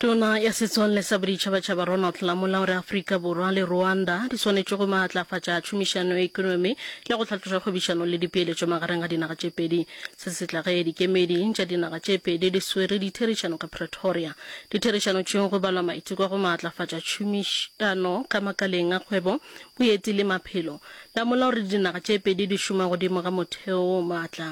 Tona ya Setswalle sa Boditšhabatšhaba Ronald Lamola o re Afrika Borwa le Rwanda di swanetše go maatlafatša tšhomišano ya ekonomi le go hlatloša kgwebišano le dipeeletšo magareng ga dinaga tše pedi. Se se tla ge dikemedi tša dinaga tše pedi di swere ditherišano ka Pretoria. Ditherišano tšeo go balwa maiteko a go maatlafatša tšhomišano ka makaleng a kgwebo, boeti le maphelo. Lamola o re dinaga tše pedi di šoma godimo ga motheo o maatla.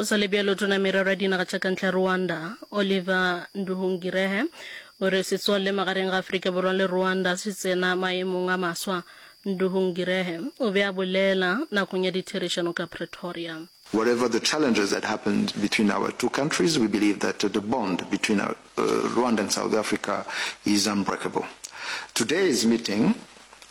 Go sa le bjalo, Tona ya Merero ya Dinaga tša Kantle ya Rwanda, Oliver Nduhungirehe, o re setswalle magareng ga Afrika Borwa le Rwanda se tsena maemong a maswa. Nduhungirehe o be a bolela nakong ya ditherišano ka Pretoria. Whatever the challenges that happened between our two countries, we believe that the bond between uh, Rwanda and South Africa is unbreakable. Today's meeting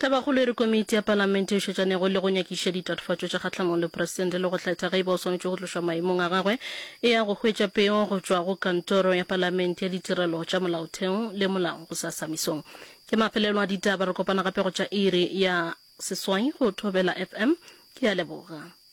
Tabakgolo e re komiti ya Palamente e šetšanego le go nyakiša ditatofatšo tša kgahlamong le Presidente le go hlatha ge e ba o swanetše go tlošwa maemong a gagwe e ya go hwetša peo go tšwa go Kantoro ya Palamente ya Ditirelo tša Molaotheo le Molao gosasa mesong. Ke mafelelo a ditaba, re kopana gape go tša iri ya seswai go Thobela FM. Ke a leboga.